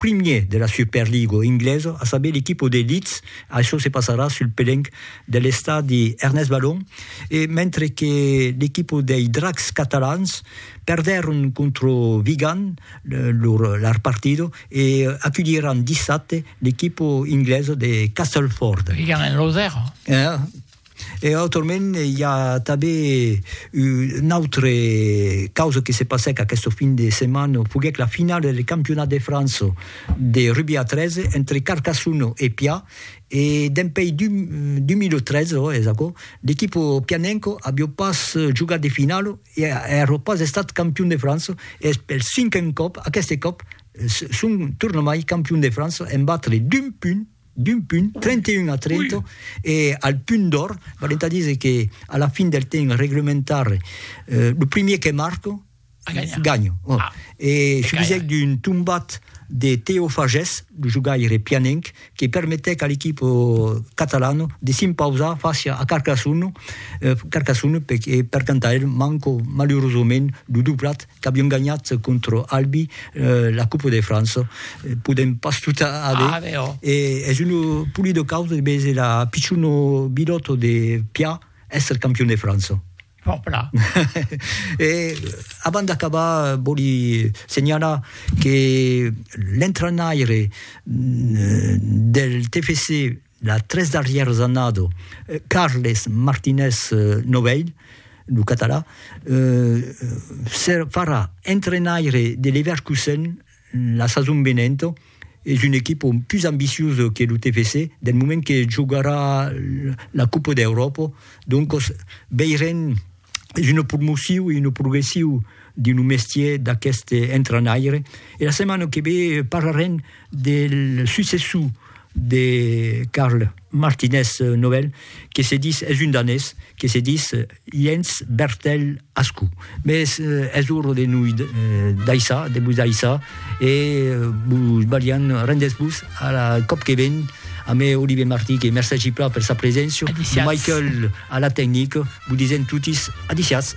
primier de la Superligo inglesa, a saber l'equipo de Leeds, això se passarà sul pelenc de l'estadi Ernest Ballon, e mentre que l'equipo dei Dracs catalans perdèron contra Vigan lor partida e aculhiràn dissabte l'equipo inglesa de Castleford. Vigan en losèr. E autrament i a tanben un autre causa que se passèc aquesta fin de setmana, foguèc la finala del Campionat de França de rugbi a 3 entre Carcassona e Pià e dempuèi 2013, ò es aquò, l'equipa pianenca aviá pas jogat de finala e aviá pas estat campion de França e es pel cinquen còp, aqueste còp son tornamai campion de França en batre d'un punt d'un punt, 31 a 30, e al punt d'òr, vale entà díser que a la fin del temps reglementari, lo primièr que marco, ganha. E se disiec d'un tombat de Teo Fages, lo jogaire pianenc, que permetèc a l'equipo catalano de s'impausar fàcia a Carcassonne, Carcassonne, e per cantar el manco malurosament lo doblat qu'avion ganhat contra Albi la Coupe de France, podem pas tot aver, e es un polido caus de veser la pichona bilòta de Pià èsser campion de França. Fòrpla. E abans d'acabar vòli senhalar que l'entrenaire del TFC, Las tres darrièras annada, Carles Martinez Novell, lo catalan, se farà entrenaire de Leverkusen la sason venenta. Es una equipa pus ambiciosa que lo TFC del moment que jogarà la Copa d'Euròpa, doncas veirem. es una promociu e una progressiu de lo mestier d'aqueste entranaire e la setmana que ve parlarem del successor de Carl Martinez Nobel que se dis es un danés que se dis Jens Bertel Askou. Mes es ora de noi daissar, de vos daissar. E vos balhan, rendètz-vos a la còp que ven a me Olivier Martí que mercègi plan per sa preséncia, Michael a la tecnica, vos disèm totis adiciatz.